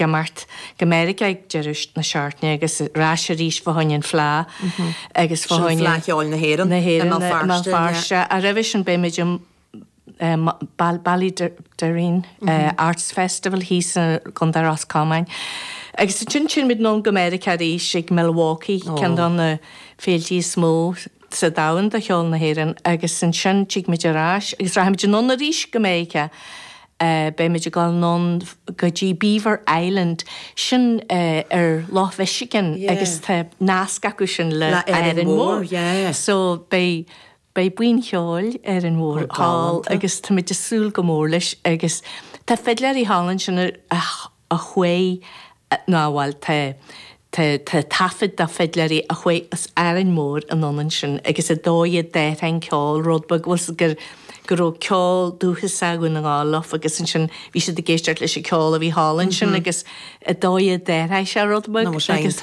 Ag imeacht go Meiriceá ag deireadh na seachtaine agus ar ais arís fá choinne an Fleá agus fá choinne. Sin Fleá Cheoil na hÉireann na hÉireann i mBéal Feirste. Ach roimhe sin beimid i Ballaghaderreen Arts Festival thíos i gContae Ros Comáin agus ansin théimid anonn go Meiriceá arís ag Milwaukee, ceann de na féiltí is mó sa domhan do cheol na hÉireann, agus ansin tigimid ar ais agus rachaimid anonn arís go Meiriceá. Beimid ag dul anonn go dtí Beaver Island, sin ar Loch Mhichigan agus tá nasc acu sin le Árainn Mhór. So beidh buíon cheoil Árainn Mhór thall agus táimid ag súil go mór leis agus tá fidléirí thall ansin a a chuaigh nó bhuel tá tá tá taifead de fidléirí a chuaigh as Árainn Mhór anonn ansin agus an dóigh a d'athraigh an ceol rud beag bhfuil a fhios agat go raibh ceol dúchasach Dhún na nGall leo agus ansin bhí siad ag éisteacht leis an ceol a bhí thall ansin agus an dóigh a d'athraigh sé rud beag agus.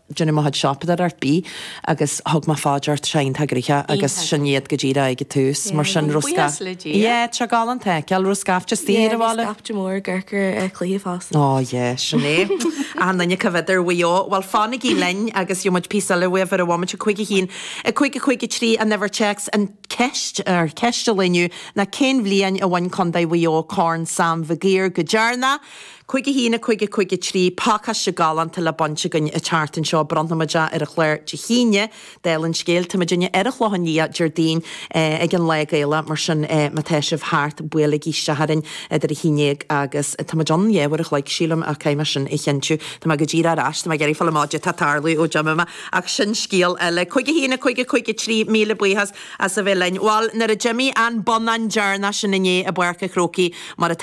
Déanamh mo chuid siopadóireacht ar bith agus thug mé fá dear Seaghan Tá Gréithe agus sin iad go díreach ag an tús mar sin raibh Buíochas le Dia. Yeah tá galánta a fheiceáil raibh scaifte is daoine ar a bhí scaifte mór gCorcair ar cloíodh fós. Ó yeah sin é. Achan nduine ag coimhéad ar Mhaigh Eo. Bhuel fanaigí linn agus gheobhaimid píosa eile uaibh ar an bhomaite. 51, 5, 5, 3, An Uimhir Téacs An cheist, or ceist an lae inniu ná cén bhliain a bhain Contae Mhaigh Eo Corn Sam Mhig Uidhir go deireanach? Cúig a haon, a cúig, a cúig a trí, pacáiste galánta le baint againn an tseachtain seo. Bronnfaimid é ar an chlár Dé hAoine, dála an scéil. Tá muidinne ar an Chlochán Liath, Déardaoin, ag an Lá Gaelach, mar sin má tá sibh thart, buailigí isteach orainn idir a haon dhéag agus. Táimid ann dhá uair a chloig, sílim, ach caithfidh mé sin a chinntiú. Tá mé go díreach ar ais, tá mé ag iarraidh fáil amach cad é tá ag tarlú ó d'imigh mé, ach sin scéal eile. Cúig a haon, a cúig, a cúig a trí, míle buíochas as a bheith linn. Bhal, nuair a d'imigh an bonnán deireanach sin inné i bPáirc a' Chrócaigh, mar atá,